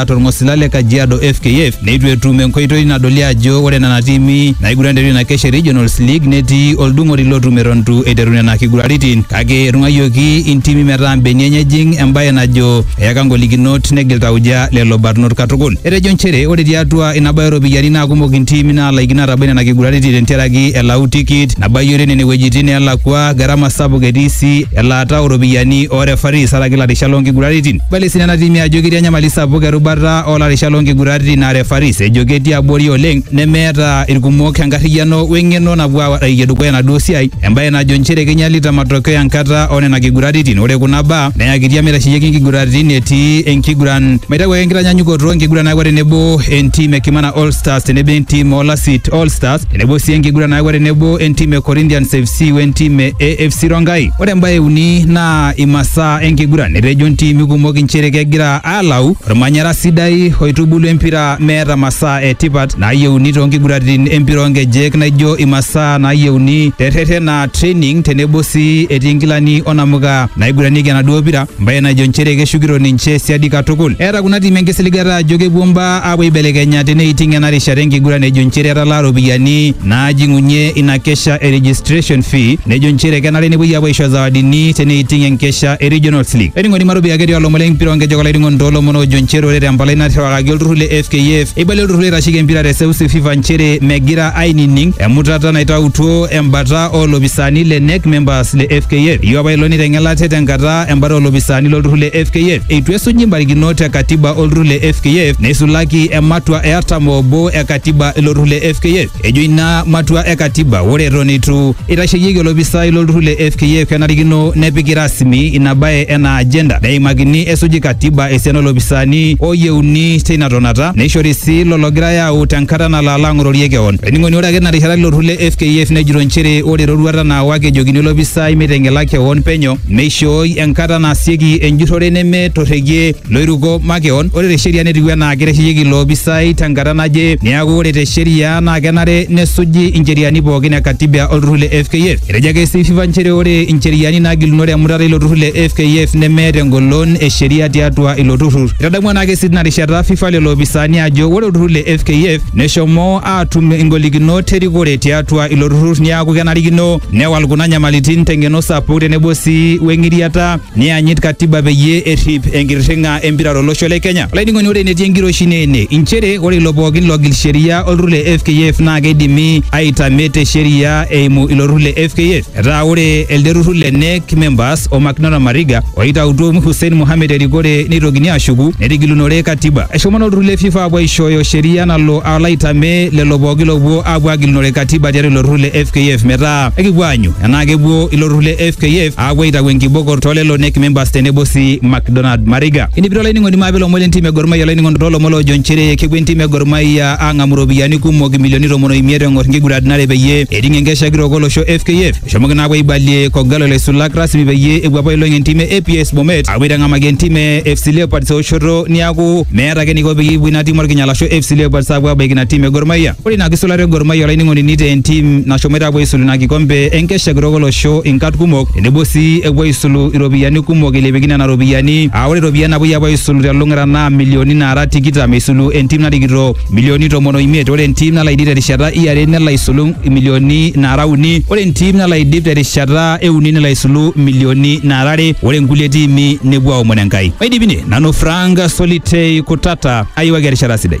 atua orng'osila le Kajiado FKF neitu etum enkoitoi nadoli ajo ore nena tiimi naiguran te ina kesha e Regionals League netii oldung'oti lotum eton eitu eiteru nena kiguraritin kake etung'ayioki intimi metaa mbenia enye ejing embaye najo eyaka ngolikinot negil tauja lelo barnot katukul. Etejo nchere ore tiatua ina bae ooropiyiani naa kumok intiimi naalaikino atabai nena kiguraritin tentiaraki elau tikit nabayiore nene wuejitin neelakua, garama sapuk etii sii elaata ooropiyiani oo refaris araki ilarishat loo nkiguraritin. Ibali sii nena tiimi ajo ketii enyamali sapuk erubata o larisha loo nkiguraritin aa refaris ejo ketii abori oleng nemeeta irkumok enkarriyiano we ng'eno napuo aarayie dukuya enaduo siai embae najo nchere keinyalita matokeo enkata o nena kiguraritin. Ore kuna baa neyakitia meitasheyieki nkiguraritin etii enkiguran. Maitau ake enkitanyanyukoto enkiguran nayawua tenebo entim e Kimana All Stars tenebo entim oo Lasit All Stars tenebo sii enkiguran nayawua tenebo entim e Corinthians FC wentim e AFC Rongai. Ore embae e uni naa imasaa saa enkiguran etejo ntiimi kumok inchere kegira aalau ormanyara sidai oitubulu empira meeta masaa e tipat naayieuni toonkiguraritin empira oonkejek naijo imasaa naayieuni terretena training tenebo sii etii nkilani onamuka naiguranieki enaduo pira mbae najo nchere keshukito ninche siadi katukul eeta kuna tiimi enkisiligata ajo kepuo mbaa aapuo aibelekenya teneiting ena rishata enkiguran ejo nchere etalaa ropiyiani naajing'unye ina kesha e registration fee nejo nchere kenare nepuoi apuo aisho zawadini teneiting enkesha e Regionals League. Ainining'oni matopi ake etii olomon lempira onkejek olainining'oni toolomon oojo nchere ore tempalai nairriwakaki olturrur le FKF eibalie olturrur oitasheki empira te seuseu FIFA nchere megira ainining emutata naitautuo embata oolopisaani le NEC members le FKF. Eyieu apa ilo neiteng'ela ate tenkata embata olopisaani lolturrur le FKF eitu esuji mbarikinot e katiba olturrur le FKF neisulaki ematua e artam obo e katiba ilo turrur le FKF. Ejo ina matua e katiba ore eton eitu eitasheyieki olopisai lolturrur le FKF kenarikino nepiki rasmi ina bae ena agenda neimakini esuji katiba esiana olopisaani oyieuni teina tonata neishori sii lolo ogirai aau tenkata nalo alo ang'ororie kewon. Olainining'oni ore ake ina rishata ilo turrur le FKF nejito nchere ore eroruata naawaki ejokini olopisai meiteng'ela kewon penyo Meishooi enkata naasieki enjurrore nemetorregie loiruko makeon. Ore te sheria netiu enaa keitasheyieki ilo opisai tenkata naje. Neaku ore te sheria naa kenare nesuji incheriani pookin e Katiba o lturrur le FKF. Etejo ake sii FIFA nchere ore incheriani naagilunore emutata eilo turrur le FKF nemeeta engolon e sheria tiatua ilo turrur. Eitadamu ena kesi tina rishata FIFA lelo opisaani ajo ore olturrur le FKF neshomo aatum ingolikinot erikore tiatua ilo turrur neaku kenarikino Newal kuna nyamalitin teng'eno sapuk tenebo sii weng'iriata niyanyit katiba peyie errip enkirring'a empira tolosho le Kenya. Olainining'oni ore enetii enkiroshi naa ene inchere ore ilo pookin logil sheria olturrur le FKF naa keidimi aitame te sheria eimu ilo turrur le FKF. Etaa ore elde turrur le NEC members o Macdonald Mariga oitautuo Hussein Mohamed erikore neitokini aashuku netigilunore katiba. Eshomo naa olturrur le FIFA apuo aishooyo sheria nalo alo aitame lelo pookin loopuo apuo agilunore katiba tiatua ilo turrur le FKF metaa ekipuo aanyu enaa kepuo ilo turrur le FKF aapuo aitau enkibokor toolelo NEC members tenebo si McDonald Mariga. Enipito olainining'oni maape ilomon le ntim e Gor Mahia olainining'oni toolomon loojo nchere kepuo entim e Gor Mahia aang'amu iropiyiani kumok imilioni tomon o imiet eng'or nkiguraritin are peyie eting enkesha kitok olosho FKF. Eshomoki naa apuo aibalie K'Ogalo ilaisulak rasmi peyie epuo apuo ailong entim e APS Bomet apuo aitang'amaki entim e FC Leopards eoshoto niaku meeta ake eniko peyie epuo ina tim orkinyala ashu FC Leopards apuo abaiki ina tim e Gor Mahia. Ore ina kisulata e Gor Mahia olainining'oni nitaa entim nashomoita apuo aisulu ina kikombe enkesha kitok olosho inkat kumok tenebo sii epuo aisulu iropiyiani kumok eilepieki nena ropiyiani aa ore iropiyiani napuoi apuo aisulu telulung'ata naa milioni naara tikitam eisulu entim narikito milioni tomon o imiet ore entim nalo aidip terishata e are nelo aisulu imilioni naara uni ore entim nalo aidip terishata e uni nelo aisulu imilioni naara are ore inkulie tiimi nepuo aomon Enkai. Maidip ine, nanu Frank Solitei Kutata ayiwaki erishata sidai.